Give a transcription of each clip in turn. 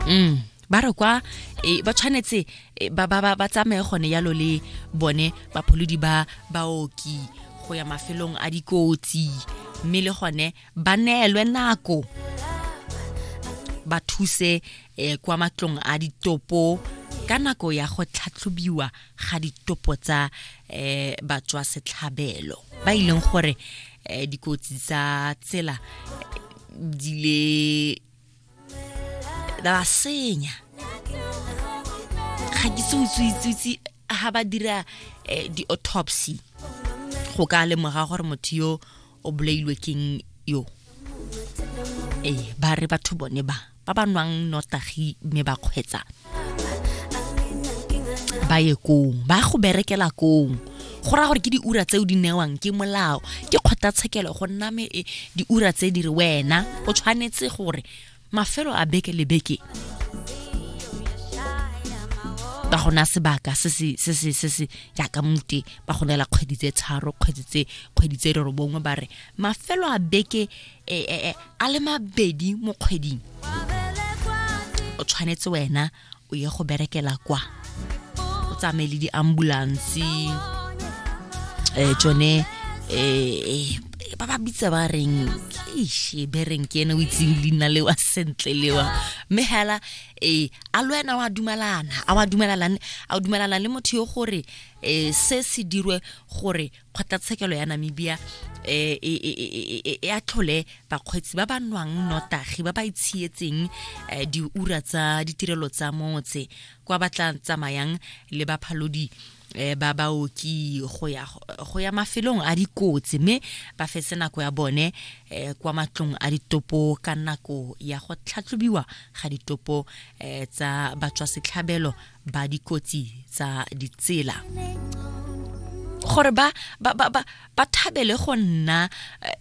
mm ba re kwa e, ba tshwanetse e, ba ba ba tsamaye gone yalo le bone bapholodi ba baoki go ya mafelong a dikotsi mme le gone ba neelwe nako ba thuse eh, kwa matlong a ditopo ka nako ya go tlhatlhobiwa ga ditopo tsa eh, batswa setlhabelo ba e leng gore eh, dikotsi tsa tsela eh, di le da ba senya ga ke se utswitsitsi ga ba dira eh, di-autopsy go ka lemoga gore motho yo o bolailwe keng yo ee ba re batho bone ba ba ba nwang nnotagi mme ba kgwetsa ba ye kong ba go berekela kong go raya gore ke diura tseo di newang ke molao ke kgotlatshekelo go nna me e, diura tse di re wena o tshwanetse gore mafelo a beke le beke ba gona sebaka se se se se se se jaaka mute ba go neela kgwedi tse tharo kgwedi tse kgwedi tse re bongwe ba re mafelo a beke e, e, e, a le mabedi mo kgweding o tshwanetse wena o ye go berekela kwa o tsamaye le di-ambulance um tsone um ba ba bitsa ba reng ishe be reng ke ene o itseng leina lewa sentle lewa mme hela e a le wena wa dumelana a wa dumelalane a o dumelana le motho yo gore e se se dirwe gore kgotlatshekelo ya namibia eh, e, e, e, e atlhole bakgweetsi ba ba nwang notagi ba ba itshietseng eh, diura tsa ditirelo tsa motse kwa ba tla tsamayang le baphalodi eh, ba baoki go ya go ya mafelong a dikotsi mme ba fetse nako ya bone eh, kwa matlong a ditopo ka nako ya go tlhatlhobiwa ga ditopo eh, tsa batswa setlhabelo ba dikotsi tsa ditsela gore ba ba ba ba thabele go nna eh,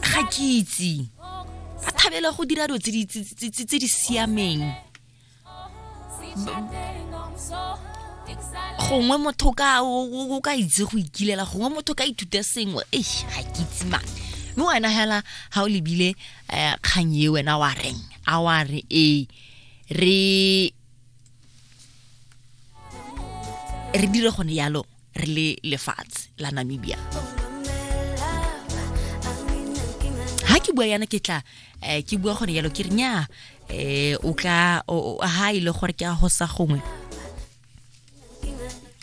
ga kitse ba thabele go dira dilo tse di siameng gongwe motho ka o ka itse go ikilela gongwe motho ka ithuta sengwe e ga ke itse mang mme wena hela ga o lebile um kgang e wena wa reng a wa re ee re re dire gone yalo re le lefatshe la namibia ha ke bua yana ke tla eh, ke bua gone yalo ke re nya eh, o tla ha ile e gore ke a hosa gongwe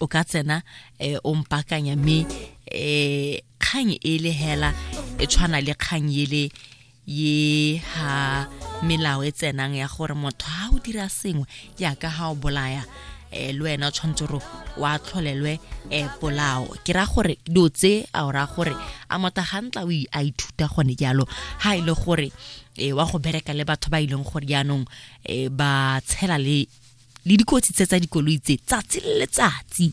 o ka tsena eh, o mpakanya mme um kgang e le hela e tshwana le kgang ele ye ha melao e tsenang ya gore motho ha o dira sengwe jaaka ha o bolaya um le wena o tshwanetse gore wa tlholelwe um polao ke ra gore dilo tse a o raya gore a motho ga ntla o a ithuta gone jalo ha e le gore um wa go bereka le batho ba e leng gore jaanong um ba tshela le le dikotsi tse tsa dikoloi tse tsatsi le letsatsi